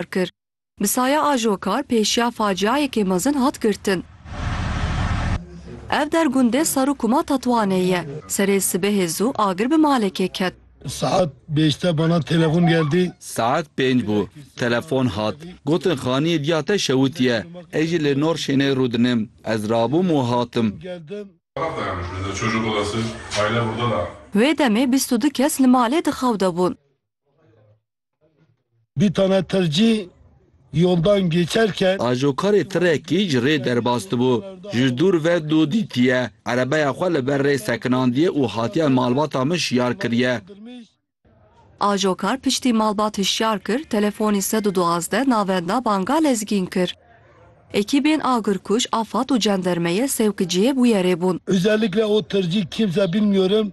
diyar kir. Bi saya ajokar pêşiya faciayekê mezin hat girtin. Ev der gundê Sarûkuma Tetwanê ye. Serê sibehê zû agir bi malekê ket. Saet bêşte bana telefon geldi. Saet pênc bû. Telefon hat. Gotin xaniyê diya te şewitiye. Ez jî li nor şênê rûdinim. Ez rabûm û hatim. Wê demê bîst û du kes li malê di xew de bûn. Dî tane tircî yoldan gêçer ke. Ajokarê tirekî ji rê derbas dibû. Ji dûr ve dû dîtiye. Erebeya xwe li ber rê sekinandiye û hatiye malbata min şiyar kiriye. Ajokar piştî malbat hişyar kir, telefonî sed û duwazdeh navenda banga lezgîn kir. Ekîbên agirkuj, afad û cendermeye sewkiciyê bûyerê bûn. Özellikle o tircî kimse bilmiyorum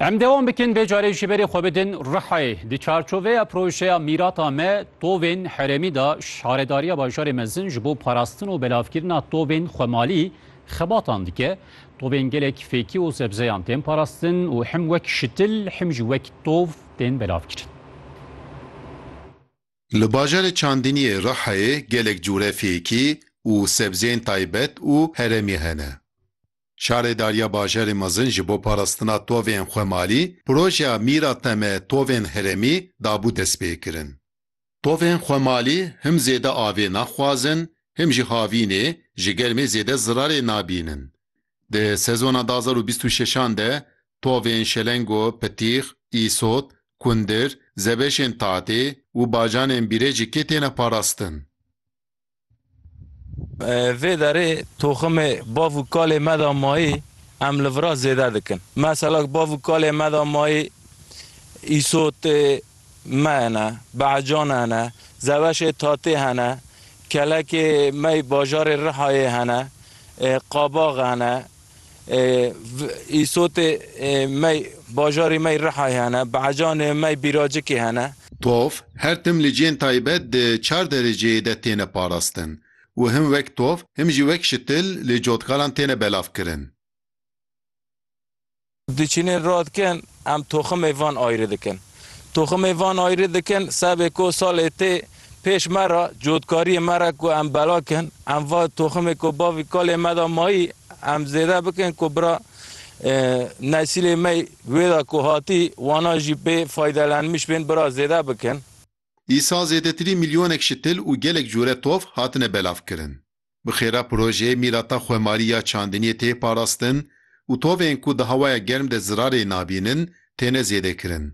Em dewam bikin vê carê ji berê xwe bidin Rihayê. Di çarçoveya projeya Mîrata me tovên herêmî de Şaredariya Bajarê Mezin ji bo parastin û belavkirina tovên xwemalî xebatan dike. Tovên gelek fêkî û sebzeyan tên parastin û him wek şitil him jî wek tov tên belavkirin. Li bajarê Çandiniyê Rihayê gelek cûre fêkî û sebzeyên taybet û herêmî hene. Şaredariya Bajarê Mezin ji bo parastina tovên xwemalî projeya Mîra te me tovên herêmî dabû destpêkirin. Tovên xwemalî him zêde avê naxwazin him jî havînê ji germê zêde zirarê nabînin. Di sezona du hezar û bîst û şeş an de tovên Şelengo, Pitîx, Îsot, Kundir, Zebeşên Tatê û bacanên Bîrêcikê têne parastin. Vê derê toximê bav û kalê me de mayî em li vira zêde dikin. Mesela ku bav û kalê me de mayî îsotê me hene, behecan hene, zeweşê tatê hene, kelekê me yê bajarê Rihayê hene, qabax hene, Îsotê mey bajarê mey Rihayê hene, Behecanê mey Bîracikê hene. Tov her tim li ciyên taybet di çar dereceyê de têne parastin û him wek tov him jî wek şitil li cotkaran têne belavkirin. Diçînin radikin em toximê van ayrî dikin. Toximê van ayrî dikin sebê ku salê tê pêş me re cotkariyê me re ku em bela kin em va toximê ku bavî kalê me de mayî em zêde bikin ku bira nesîlê me wê de ku hatî wana jî bê faydelenmiş bên bira zêde bikin. Îsa zêdetirî milyonek şitil û gelek cure tov hatine belavkirin. Bi xêra projeyê mîrata xwemarî ya çandiniyê tê parastin û tovên ku di hewaya germ de zirarê nabînin têne zêdekirin.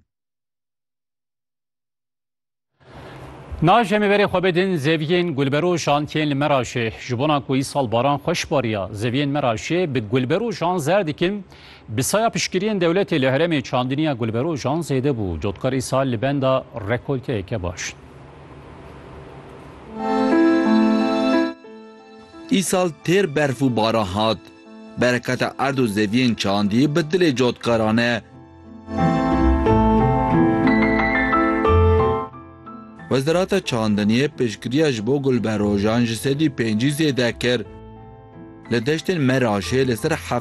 Na jemê verê xwe bidin zeviyên gulberojan tên li Meraşê. Ji bona ku îsal baran xweş bariya, zeviyên Meraşê bi gulberojan zer dikin. Bi saya piştgiriyên dewletê li herêmê çandiniya gulberojan zêde bû. Cotkar îsal li benda rekolteyeke baş in. Îsal têr berf û baran hat. Bereketa erd û zeviyên çandî bi dilê cotkaran e. Wezareta Çandiniyê piştgiriya ji bo gulberojan ji sedî pêncî zêde kir. Li deştên Meraşê li ser heftê